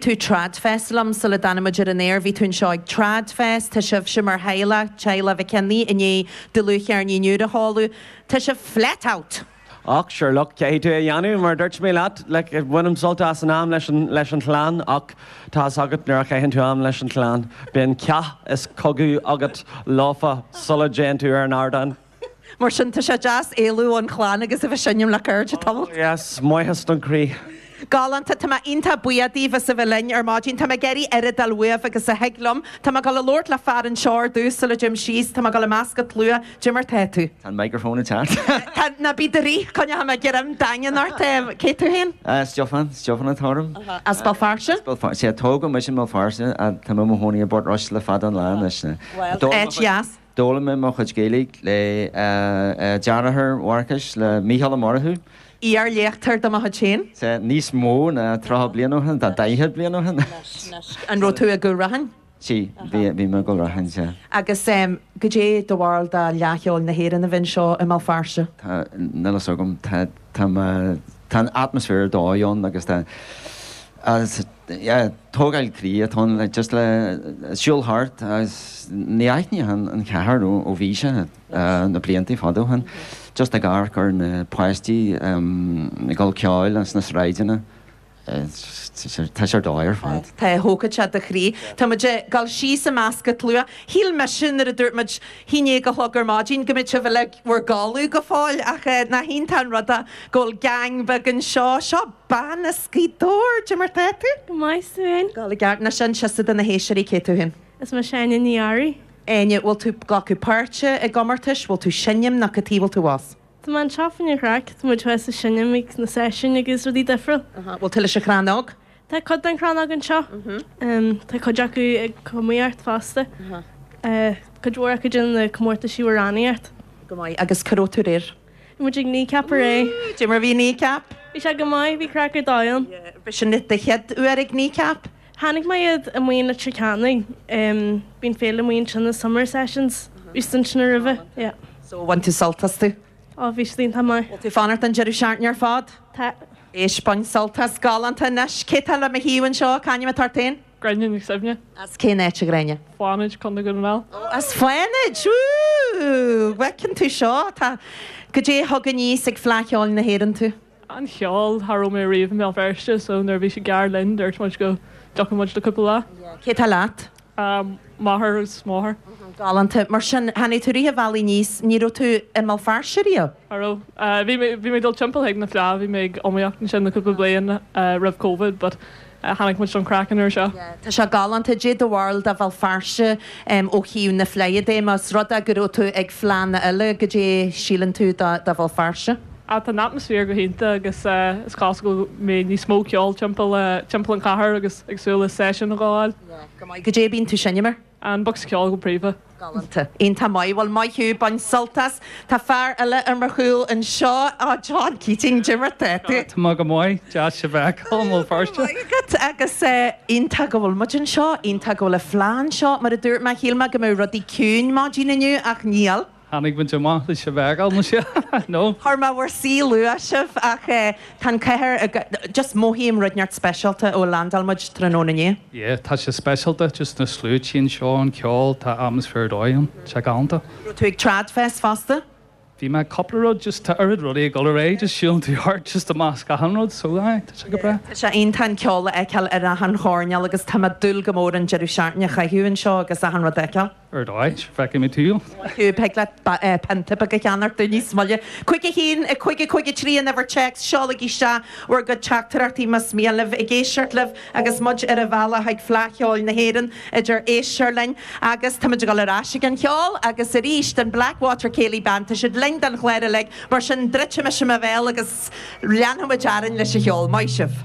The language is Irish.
tú TradFest liom sula dtáinig muid ar an aer. Bhí tú anseo ag TradFest. Tá sibhse mar theaghlach, teaghlach Mhic Annaidh, i ndiaidh dlúthcheirnín úr a sheoladh. Tá sibh flat out! Och, sure, look, caithfidh tú é a dhéanamh, mar dúirt mé leat, like, bainim sult as an am leis an, leis an chlann, och, tá fhios agat, nuair a chaitheann tú am leis an chlann, bíonn cath is cogadh agat leofa sula dtéann tú ar an ardán. Mar sin, tá sé deas éalú ón chlann agus a bheith seinm le cairde tamall. Yes, maitheas don chroí. Galánta, tá mé iontach buíoch díbh as a bheith linn ar maidin. Tá mé ag iarraidh oiread ceoil uaibh agus a thig liom. Tá mé ag dul a labhairt le fear anseo ar dtús sula dtéim síos. Tá mé ag dul i measc an tslua. Goidé mar tá tú? Tá an microphone ag teacht. Tá, ná bí i do rith, coinneoidh mé greim daingean ort. Cé tú féin? Stiofán, Stiofán atá orm. As Béal Feirste? As Béal Feirste, sea. Tógadh mise i mBéal Feirste ach tá mé i mo chónaí i bPort Rois le fada an lá anois. Bhuel, áit dheas. D'fhoghlaim mé mo chuid Gaeilge le deartháir Mharcais, le Mícheál Ó Murchú. Iar-léachtóir de mo chuid féin. Sea, níos mó ná tríocha bliain ó shin, tá daichead bliain ó shin. An raibh tú i gCúil Raithin? Sea, bhí mé i gCúil Raithin, sea. Agus goidé do bharúil de Fhleadh Cheoil na hÉireann a bheith anseo i mBéal Feirste? Tá, níl fhios agam. Tá. Tá an atmaisféar ar dóigh ann agus tá agus yeah tógáil croí atá ann le just le siúl thart agus ní aithneochainn an chathair ó bhí sé na blianta fada ó shin just ag amharc ar na páistí ag gabháil cheoil sna sráideanna. Tá sé ar dóigh ar fad. Tá, thógfadh sé do chroí. Tá muid ag dul síos i measc an tslua. Shíl mise nuair a dúirt muid a haon déag a chlog ar maidin go mbeadh sibh uilig bhur gcodladh go fóill ach nach iontach an rud go bhfuil gang beag anseo. Seo bean as Gaoth Dobhair. Goidé mar tá tú? Go maith, 's tú fhéin? Go le gairid. Ná seinn piosa do na héisteoirí. Cé tú fhéin? Is mise Áine Ní Fhearraigh. Áine, bhfuil tú glacadh páirte i gcomórtais? Bhfuil tú seinm nó cad tuige a bhfuil tú abhus? Tá mé anseo fá choinne craic, tá muid thuas ag seinm ag na seisiúin agus rudaí difriúil. An bhfuil tú leis an Chrannóg? Tá cuid den Chrannóg anseo. Tá cuid acu ag iomaíocht fosta. Cuid mhór acu ag déanamh na comórtaisí amhránaíocht. Go maith, agus cá raibh tú aréir? Bhí muid ag Kneecap aréir. Woo! Goidé mar bhí Kneecap? Bhí sé go maith, bhí craic ar dóigh ann. Yeah. B'shin do chéad uair ag Kneecap? Chonaic mé iad i, bíonn, Leitir Ceanainn, bíonn féile amuigh ansin, na Summer Sessions, bhí siad ansin roimhe, yeah. So, bhain tú sult astu? Oh, bhí siad iontach maith. Bhfuil tú ag fanacht don deireadh seachtaine ar fad? Tá. Éist, bain sult as. Galánta. Anois, cé tá le mo thaobh anseo? C'ainm atá ort fhéin? Gráinne Nic Suibhne. As cén áit, a Ghráinne? Fánaid, Contae Dhún na nGall. Oh, as Fánaid! Wúúúú! Bhfeiceann tú seo, tá. Goidé a thug aníos ag Fleadh Cheoil na hÉireann tú? an cheoil, cha raibh mé ariamh i mBéal Feirste so nuair a bhí sé gar linn dúirt muid go dtiocfadh muid le cúpla lá. Yeah, cé tá leat? M'athair agus mo mháthair. Aha, galánta. Mar sin, tháinig tú rith an bhealaigh aníos, ní raibh tú i mBéal Feirste ariamh? Cha raibh. Bhí mé, bhí mé ag dul timpeall ag na Fleadh, bhí mé ag iomaíocht ansin le cúpla bliain roimh Covid but Tháinig muid don chraic an uair seo. Tá sé galánta. Cad é do bharúil de Bhéal Feirste ó thaobh na fleidhe de, os rud é go raibh tú ag fleánna eile, cad é a shíleann tú de Bhéal Feirste? Ah, tá an atmaisféar go hiontach agus is cosúil go mbeidh níos mó ceoil timpeall an chathair agus ag súil le seisiún a ghabháil. Go maith. Cad é bíonn tú ag seinm ar? An bocsa ceoil go príomha. Galánta. Iontach maith. Bhuel, maith thú. Bain sult as. Tá fear eile ar mo chúl anseo. Á, John Keating, cad é mar atá tú? Tá mé go maith. Deas a bheith i mBéal Feirste. Maith agat. Agus iontach go bhfuil muid anseo. Iontach go bhfuil an fleá anseo. Mar a dúirt mé, shíl mé go mbeadh rudaí ciúin maidin inniu ach níl. Tháinig muid amach leis an bhfeighil, nó sea? Nó. Chuir mé in bhur suí luath sibh ach Tá an chathair ag. Just mothaím rud ineacht speisialta ó landáil muid tráthnóna inné. Yeah, tá sé speisialta, just na sluaití anseo, an ceol, tá atmaisféar ar dóigh ann. Tá sé galánta. Raibh tú ag TradFest fosta? Bhí mé ag cúpla rud, just tá oiread rudaí ag dul ar aghaidh, just siúlann tú thart, just i measc achan rud, so aye, tá sé go breá. Yeah, tá sé iontach an ceol a fheiceáil ar achan choirnéal agus tá mé ag dúil go mór an deireadh seachtaine a chaitheamh anseo agus achan rud a fheiceáil. ar dóigh, feicfidh mé thú, thig leat pionta beag a cheannacht dúinn níos moille. Cúig a haon, cúig a cúig a trí an uimhir téacs, seolaigí isteach bhur gcuid teachtaireachtaí más mian libh, ag éisteacht libh agus muid ar an bhealach chuig Fleadh Cheoil na hÉireann idir Easter linn agus táimid ag dul ar ais ag an cheol agus arís don Blackwater Céilí Band, tá siad linn don chlár uilig, mar sin druidfidh mise mo bhéal agus leanfaimid orainn leis an cheol. Maith sibh!